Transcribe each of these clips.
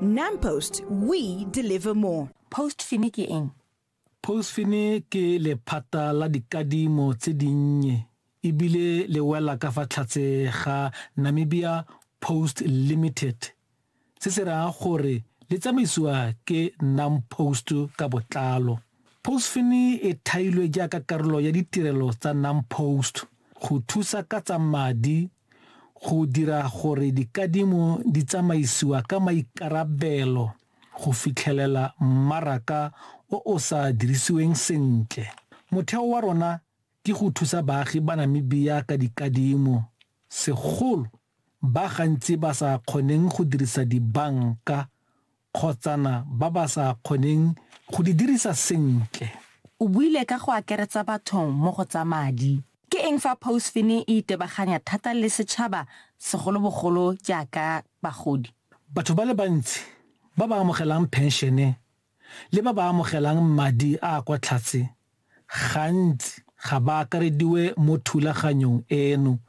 NamPost, we deliver more. Postfini ke eng? Postfini ke lephata la dikadimo tse dinnye ebile le wela ka fa tlhatse ga Namibia Post Limited se se raya gore le tsamaisiwa ke NamPost ka botlalo. Postfini e thailwe jaaka karolo ya ditirelo tsa NamPost go thusa ka tsa madi go dira gore dikadimo di tsamaisiwa ka maikarabelo go fitlhelela mmaraka o o sa dirisiweng sentle. Motheo wa rona ke go thusa baagi ba Namibia ka dikadimo, segolo ba gantsi ba sa kgoneng go dirisa dibanka, kgotsana ba ba sa kgoneng go di dirisa sentle. O buile ka go akeretsa batho mo go tsa madi. Ke eng fa Pousfin e itebaganya thata le setšhaba segolobogolo jaaka bagodi? Batho ba le bantsi ba ba amogelang phenšene le ba ba amogelang madi a a kwa tlhatse gantsi ga ba akarediwe mo thulaganyong eno,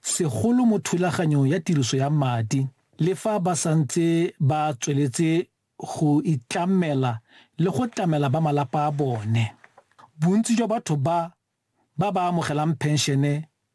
segolo mo thulaganyong ya tiriso ya madi, le fa ba santse ba tsweletse go itlamela le go tlamela ba malapa a bone. Bontsi jwa batho ba ba ba amogelang phenšene